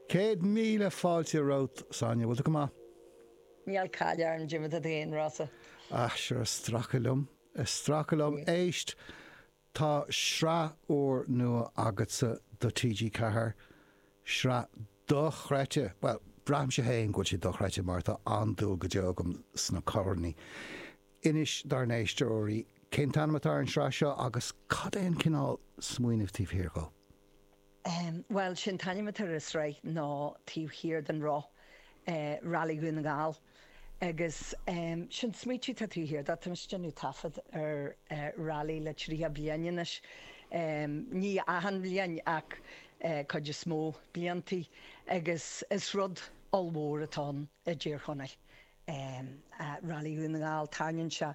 Céad míle fáilte romhat, Sonia. Bhfuil tú go maith? Níl caill orm, dé mar atá tú féin, Rossa. Ah, sure, ag stracadh liom. Ag stracadh liom. Éist, tá sraith úr nua agatsa do TG Ceathair. Sraith dochreidte. Bhuel, braithimse féin go bhfuil sé dochreidte mar tá an-dúil go deo agam sna carrannaí. Inis dár n-éisteoirí cén t-ainm atá ar an sraith seo agus cad é an cineál smaoineamh taobh thiar dhó. Bhuel, sé an t-ainm atá ar an sraith ná Taobh Thiar den Roth, Rally Dhún na nGall. Agus sé an smaoitiú atá taobh thiar de, tá muid ag déanamh taifead ar rally le triocha bliain anois, ní achan bhliain ach cuid is mó bliantaí, agus is rud ollmhór atá ann i dTír Chonaill. ar Railí Dhún na nGall, tarraingíonn sé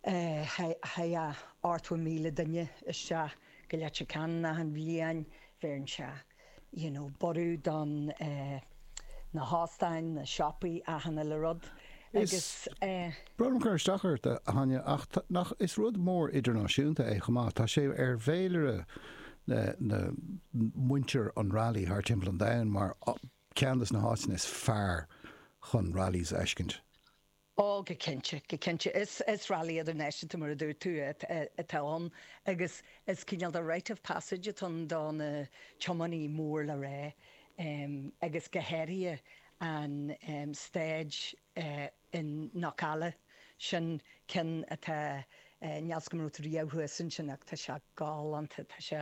thart fá 70,000 duine isteach go Leitir Ceanainn achan bhliain, bheireann sé you know borradh do na hóstáin, na siopaí, achan uile rud agus eh. Brón orm cur isteach ort, Sonia, ach tá, nach, is rud mór idirnáisiúnta é chomh maith, tá sé ar bhféilire na, na, muintir an Railí thar timpeall an domhain mar, Ceann des na háiteanna is fearr chun rallies a fheiscint. Ó, go cinnte, go cinnte. Is Railí Idirnáisiúnta, mar a dúirt tú, atá ann agus is cineál de rite of passage atá ann do na tiománaí mór le rá agus go háirithe an staid in Knockalla, sin ceann atá níl a fhios agam an raibh tú riamh thuas ansin ach tá sé galánta, tá sé,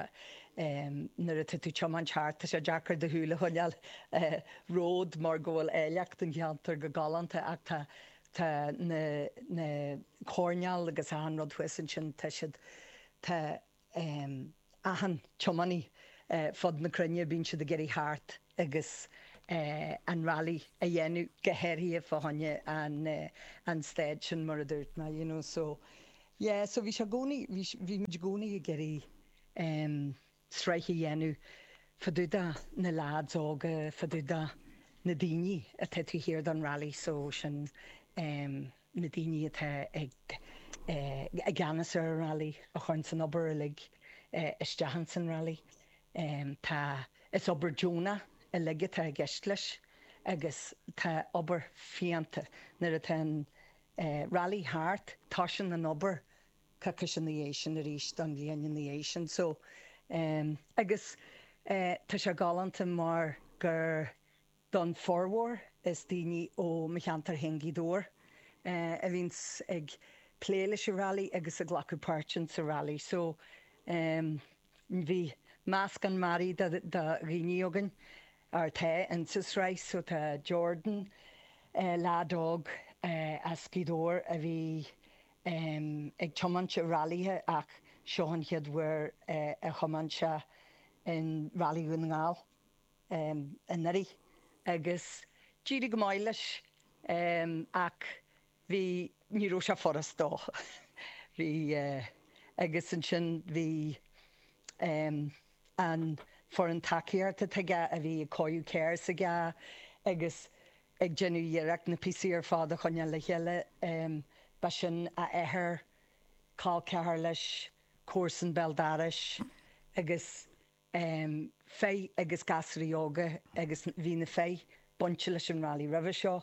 nuair atá tú ag tiomáint thart, tá sé deacair do shúil a choinneáil romhat mar go bhfuil áilleacht an cheantair go galánta ach tá, tá na, na, coirneáil agus achan rud thuas ansin, tá siad, tá. achan tiománaí fud na cruinne, bíonn siad ag iarraidh theacht agus an rally a dhéanamh, go háirithe fá choinne an staid sin, mar a dúirt mé, you know, so yeah, so bhí sé i gcónaí, bhí, bhí muid i gcónaí ag iarraidh sraith a dhéanamh fadúda na lads óga, fadúda na daoine atá taobh thiar don rally, so sin. na daoine atá i gceannas ar an Railí a chuireann an obair uilig isteach ins an Railí. Tá, is obair deonach uilig atá i gceist leis agus tá obair fiánta, nuair atá an Railí thart, tosaíonn an obair coicís ina dhiaidh sin arís don bhliain ina dhiaidh sin so agus tá sé galánta mar gur Don bhformhór, is daoine ó mo cheantar féin, Gaoth Dobhair, a bhíonns ag plé leis an Railí agus ag glacadh páirt ins an Railí so bhí meascán mearaí de dhaoine againn. Ar tá ins an sraith so tá Jordan, leaid óg as Gaoth Dobhair a bhí ag tiomáint i railíthe ach seo an chéad uair a thiomáin sé in Railí Dhún na nGall. anuraidh agus d'éirigh go maith leis ach bhí, ní raibh sé furast dó. Bhí, agus ansin bhí an foireann tacaíochta aige a bhí ag cóiriú carr s'aige agus ag déanamh iarracht na píosaí ar fad a choinneáil le chéile. Ba sin a athair, col ceathar leis, comharsan béal dorais agus. um fir agus gasraí óga agus bhí na fir bainte leis an Rally roimhe seo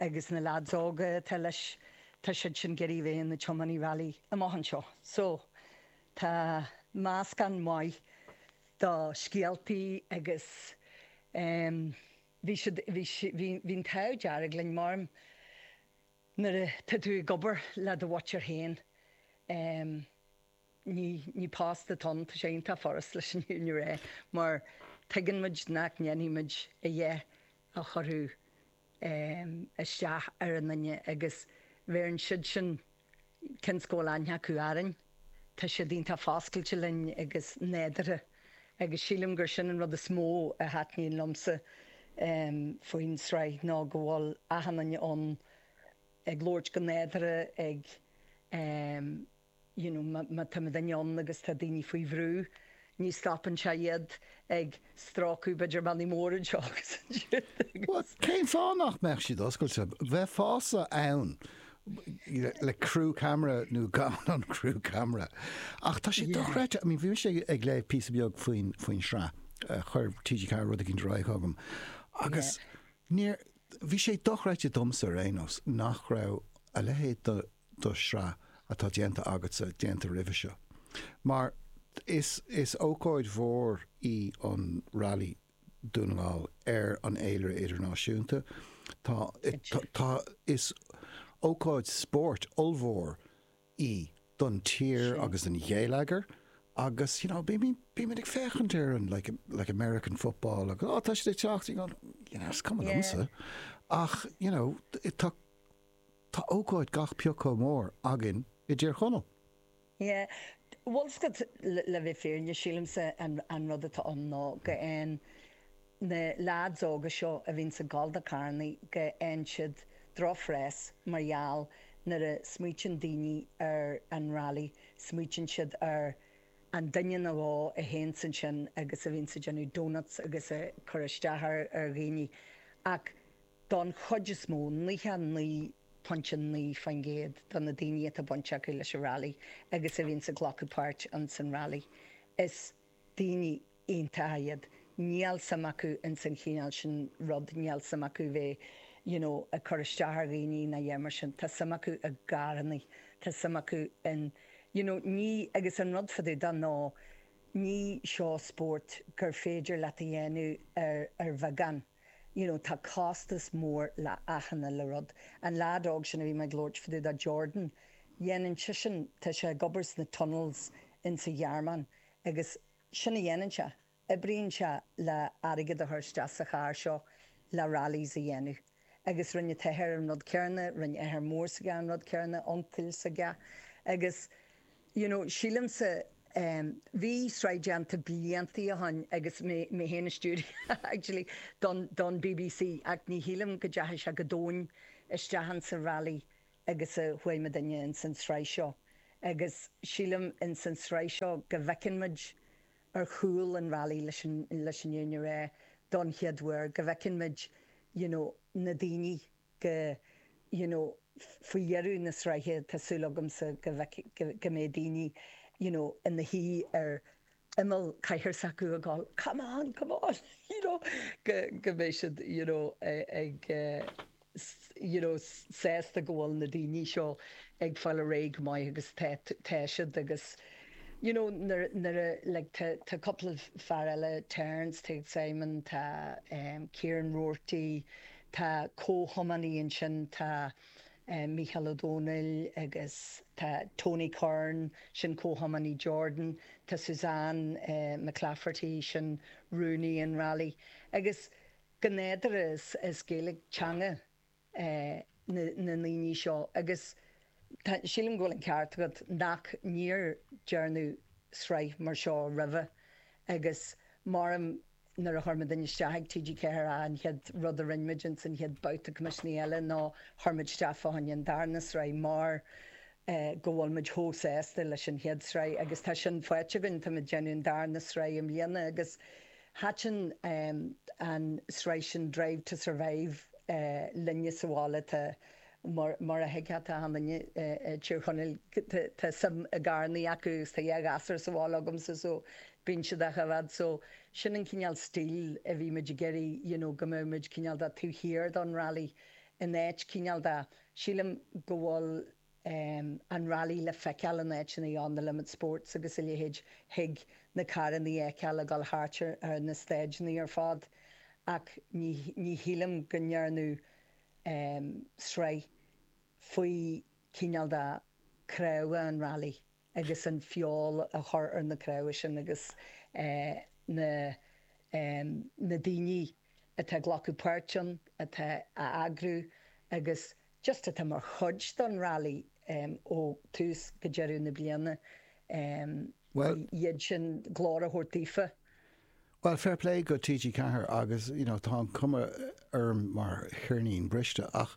agus na leads óga atá leis tá siad sin ag iarraidh a bheith ina dtiománaithe rally amach anseo. So tá meascán maith do scéaltaí agus um bhí siad bhí bhí bhí an t-ádh dearg linn mar nuair a tá tú ag obair le do mhuintir féin um Ní post atá ann, tá sé iontach furast leis an fhírinne a rá, mar tuigeann muid nach ndéanfaidh muid a dhath a chuirfeadh isteach ar aon nduine agus bhéarann siadsan, cionn is go bhfuil aithne acu orainn. Tá siad iontach foscailte linn agus nádurtha agus sílim gur sin an rud is mó a thaitníonn liomsa faoin sraith ná go bhfuil achan nduine ann ag labhairt go nádurtha ag. you know, má táimid in ann agus tá daoine faoi bhrú, ní stopann sé iad ag stróiceadh b'fhéidir mionnaí móra anseo agus ansiúd agus. Cén fáth nach mbeadh siad oscailte? Bheifeása ann le crew camera nó gan an crew camera. Ach tá sé dochreidte, I mean, bhí mise ag léamh píosa beag faoin sraith, chuir TG4 rud éigint ar aghaidh chugam agus níor, bhí sé dochreidte domsa ar aon nós nach raibh a leithéid de, do shraith atá déanta agatsa déanta roimhe seo. Mar is is ócáid mhór í an Railí Dún na nGall ar an fhéilire idirnáisiúnta, tá tá is ócáid spóirt ollmhór í don tír agus don gheilleagar agus you know bímid bímid ag féachaint ar an like like American football agus oh tá siad ag teacht you know you know is cuma liomsa ach you know tá Tá ócáid gach pioc chomh mór againn i dTír Chonaill. Yeah, bhfuil a fhios agat, le bheith fírinne, sílimse an rud atá ann ná go bhfaigheann na leaids óga seo a bhíonns ag gol do carrannaí go bhfaigheann siad drochphreas mar gheall nuair a smaoiteann daoine ar an rally smaoiteann siad ar an duine nó dhó a théanns ansin agus a bhíonns ag déanamh doughnuts agus ag cur isteach ar dhaoine ach Don chuid is mó, 99.9% de na daoine atá baint acu leis an Railí agus a bhíonns ag glacadh páirt ins an Railí, is daoine iontacha iad. Níl suim acu ins an chineál sin rud, níl suim acu bheith you know ag cur isteach ar dhaoine ná a dhath mar sin. Tá suim acu i gcarrannaí, tá suim acu in you know ní, agus an rud fá dtaobh de ná ní seo spórt gur féidir leat a dhéanamh ar bheagán, You know, tá costas mór le achan uile rud. An leaid óg sin a bhí mé ag labhairt fá dtaobh de, Jordan, dhéanann seisean, tá sé ag obair sna tunnels insa Ghearmáin agus sin a dhéanann sé, oibríonn sé le airgead a chur isteach sa charr seo le rallies a dhéanamh. Agus rinne an t-athair an rud céarna, rinne athair mór s'aige an rud céarna, uncail s'aige, agus. you know, sílimse, em, bhí sraith déanta blianta ó shin agus mé, mé féin a stiúraigh, actually, don, don bbc ach ní shílim go dteachaigh sé chomh domhain isteach ins an rally agus a chuaigh muidinne ins an tsraith seo agus sílim ins an tsraith seo go bhfeiceann muid ar chúl an rally leis an, leis an fhírinne a rá don chéad uair, go bhfeiceann muid, you know, na daoine. the, you know faoi dheireadh na sraithe tá súil agamsa go bhfeicfidh, go mbeidh daoine you know ina shuí ar imeall cathaoir s'acu ag gol come on, come on you know go, go mbeidh siad you know ag you know sásta go bhfuil na daoine seo ag fáil ar aghaidh go maith agus tá, tá siad agus you know nuair, nuair a like tá, tá cúpla fear eile Terence, tá Simon, tá Kieran Roarty, Tá comhthiománaí ansin, tá Mícheál Ó Domhnaill agus tá Tony Curran, sin comhthiománaí Jordan, tá Suzanne McClafferty, sin rúnaí an rally. Agus go nádúrtha is Gaeilge teanga na ndaoine seo agus sílim go bhfuil an ceart agat nach, níor déarnadh sraith mar seo roimhe agus mar a deirim Nuair a chuir muidinne isteach ag TG4 an chéad rud a rinne muid ins an chéad babhta coimisiúnaithe eile ná chuir muid isteach fá choinne an darna sraith mar go bhfuil muid chomh sásta leis an chéad sraith agus tá sin faighte againn. Tá muid ag déanamh an darna sraith i mbliana agus thaitin an sraith sin Drive to Survive linne sa bhaile. Tá. Mar a thuigfeadh achan duine i dTír Chonaill, tá suim i gcarrannaí acu agus tá dhá ghasúr sa bhaile agamsa so bíonn siad achan áit so sin an cineál stíl a bhí muid ag iarraidh you know go mbeadh muid cineál de taobh thiar don rally in áit cineál de, sílim go bhfuil em an rally le feiceáil in áiteanna on the limit sports agus a leithéid, thig na carranna a fheiceáil ag dul thart ar na stáitseanna ar fad ach ní ní shílim go ndearnadh sraith faoi chineál de cnámha an Rally agus an feoil a chur ar na cnámha sin agus na daoine atá ag glacadh páirt ann atá a eagrú agus just atá mar chuid den Rally ó tús go deireadh na bliana iad sin glór a thabhairt daofa Bhuel, fair play go TG Ceathair agus, you know, tá an cuma orm mar cheirnín briste ach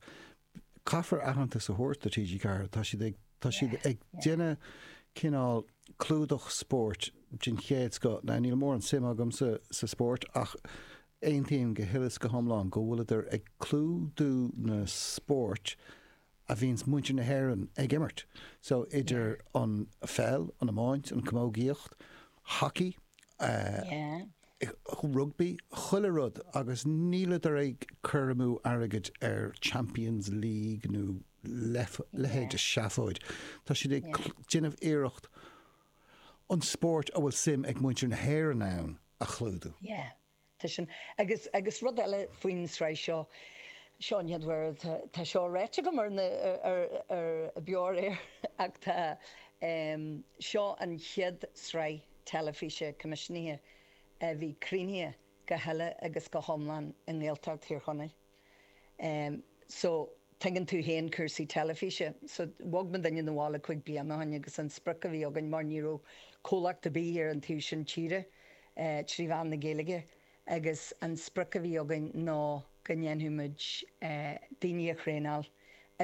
caithfear aitheantas a thabhairt do TG Ceathair, tá siad ag, tá siad ag déanamh cineál clúdach spóirt den chéad scoth. Now níl móran suim agam sa, sa spóirt ach aontaím go huile is go hiomlán go bhfuileadar ag clúdú na spóirt a bhíonn muintir na hÉireann ag imirt. So, idir an pheil, an iomáint, an camógaíocht, hockey, rugbaí, chuile rud agus níleadar ag cur amú airgid ar Champions' League nó leithéid de sheafóid. Tá siad ag déanamh iarracht an spóirt a bhfuil suim ag muintir na hÉireann ann a chlúdú. Tá sin, agus, agus rud eile faoin tsraith seo, seo an chéad uair, tá, tá seo ráite agam ar na, ar, ar Beo ar Éigean ach tá, em, seo an chéad sraith teilifíse coimisiúnaithe a bhí críochnaithe go huile agus go hiomlán i nGaeltacht Thír Chonaill. Em so tuigeann tú féin cúrsaí teilifíse. So bhog muidinne na bhaile cúig bliana ó shin agus an sprioc a bhí againn, mar ní raibh comhlacht ar bith ar an taobh sin tíre eh trí mheán na Gaeilge agus an sprioc a bhí againn ná go ndéanfadh muid eh daoine a thraenáil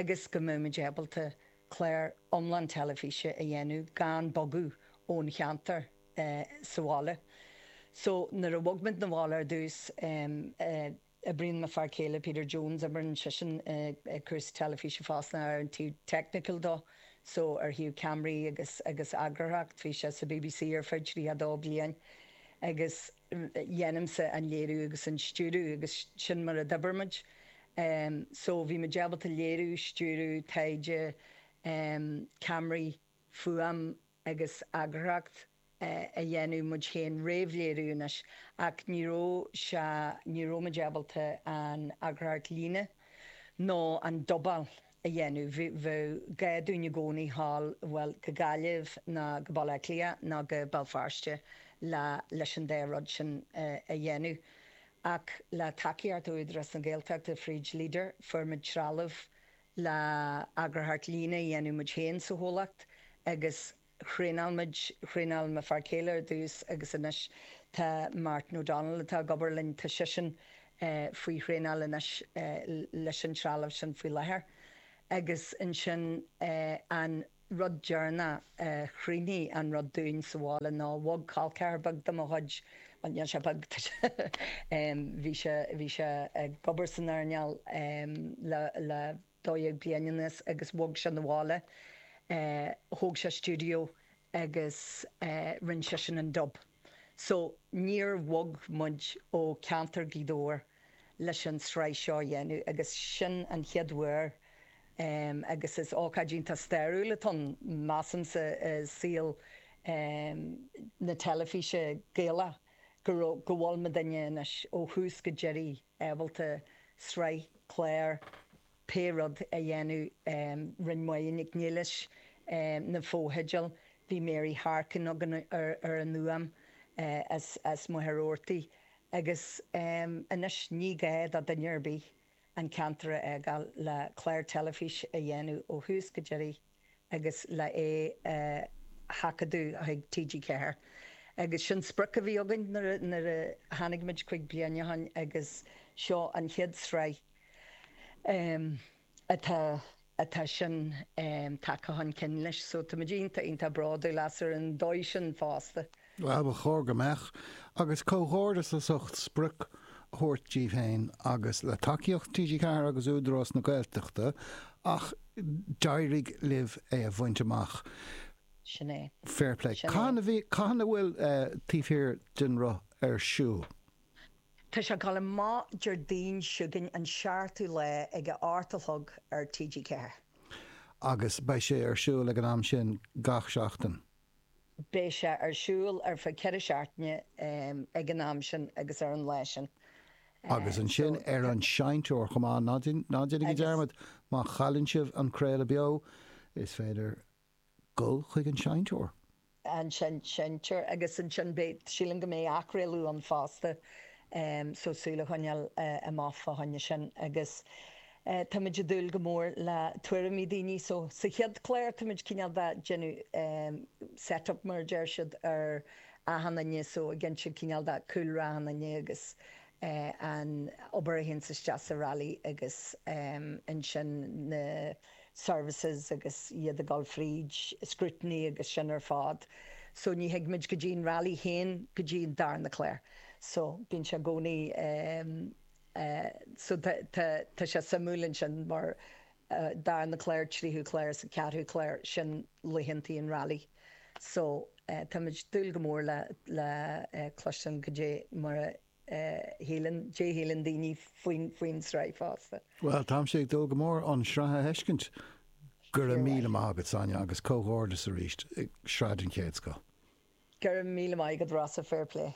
agus go mbeadh muid ábalta clár iomlán teilifíse a dhéanamh gan bogadh ón cheantar eh sa bhaile. So nuair a bhog muid na bhaile ar dtús em eh Oibríonn m'fhear céile, Peter Jones, oibríonn seisean ag cúrsaí teilifíse fosta ar an taobh technical de, so ar thaobh ceamaraí agus, agus eagarthóireacht. Bhí sé sa BBC ar feadh 32 bliain agus déanaimse an léiriú agus an stiúradh agus sin mar a d'oibir muid. So bhí muid ábalta léiriú, stiúradh, taighde, ceamaraí, fuaim, agus eagarthóireacht a dhéanamh muid féin réamhléiriú anois, ach ní raibh sé, ní raibh muid ábalta an eagarthóireacht líne nó an dubáil a dhéanamh. Bheadh gá dúinn i gcónaí thall, bhuel, go Gaillimh ná go Baile Átha Cliath ná go Béal Feirste le, leis an dá rud sin a dhéanamh. Ach le tacaíocht Údarás na Gaeltachta fríd Leader, fuair muid trealamh Le eagarthóireacht líne a dhéanamh muid féin sa chomhlacht agus thraenáil muid, thraenáil mo fear céile ar dtús agus anois tá Martin O'Donnell atá ag obair linn tá seisean faoi thraenáil anois leis an trealamh sin faoi láthair. Agus ansin an rud deireanach a chruinnigh an rud dúinn sa bhaile ná bhog col ceathair beag de mo chuid, bhuel, níl sé beag, tá sé, bhí sé, bhí sé ag obair san earnáil le, le dó dhéag bliain anuas agus bhog sé 'na bhaile, thóg sé stiúideo agus rinne seisean an dub. So, níor bhog muid ó ceantar Ghaoth Dobhair leis an sraith seo a dhéanamh agus sin an chéad uair agus is ócáid iontach stairiúil atá ann, measaimse, i saol na teilifíse Gaeilge go bhfuil muidinne anois ó thús go deiridh. ábalta sraith, clár, pé rud a dhéanamh. Rinn Máire Nic Niallais na fotheideal, bhí Mary Harkin againn ar an fhuaim as Machaire Rabhartaigh agus anois ní gá do dhuine ar bith an ceantar a fhágáil le clár teilifíse a dhéanamh ó thús go deiridh. agus le é a sheachadadh chuig TG4. Agus sin sprioc a bhí againn nuair a tháinig muid cúig bliain ó shin agus seo an chéad sraith atá sin tagtha chun cinn leis. So tá muid iontach, iontach bródúil as ar an dóigh sin fosta. Á, ba chóir go mbeadh, agus comhghairdeas as ucht sprioc a thabhairt díbh féin agus le tacaíocht TG4 agus Údarás na Gaeltachta ach d'éirigh libh é a bhaint amach. Sin é. Fair play. Sin é. Cathain a bhfuil Taobh Thiar den Roth ar siúl? Tá sé ag dul amach Déardaoin chugainn, an 7ú lá, ag a 8 a chlog ar TG4. Agus beidh sé ar siúl ag an am sin gach seachtain? Beidh sé ar siúl ar feadh ceithre seachtaine ag an am sin agus ar an lá sin. Agus ansin ar an seinnteoir chomh maith. Ná déanaigí dearmad, má chailleann sibh an craoladh beo, is féidir dul chuig an seinnteoir. An seinnteoir. Agus ansin beidh, sílim go mbeidh athchraoladh ann fosta, so súil a choinneáil amach fá choinne sin. Agus Táimid ag dúil go mór le tuairimí daoine so sa chéad chlár táimid cineál de déanamh set up mar a deir siad ar achan nduine so ag insint cineál de cúlra achan nduine agus an obair a théann isteach sa rally agus ansin na services agus iad ag dul fríd scrutiny agus sin ar fad so ní thigimid go dtí an rally féin go dtí an darna clár so bíonn sé i gcónaí so tá sé suimiúil ansin mar darna clár tríú clár is an ceathrú clár sin laethanta an railí so táimid ag dúil go mór le cloisteáil goidé mar a shíleann goidé a shíleann daoine faoin sraith fosta. Bhuel táimse ag dúil go mór an sraith a fheiscint. Go raibh míle maith agat Sonia agus comhghairdeas arís sraith den chéad scoth. Go raibh míle maith agat Rossa, fair play.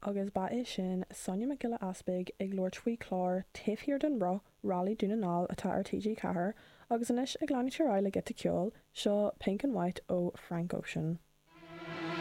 Agus ba é sin Sonia Mac Giolla Easpaig ag labhairt faoi chlár Taobh Thiar den Roth, Rally Dún na nGall atá ar TG4, agus anois ag leanúint ar aghaidh le giota ceoil, seo Pink and White ó Frank Ocean.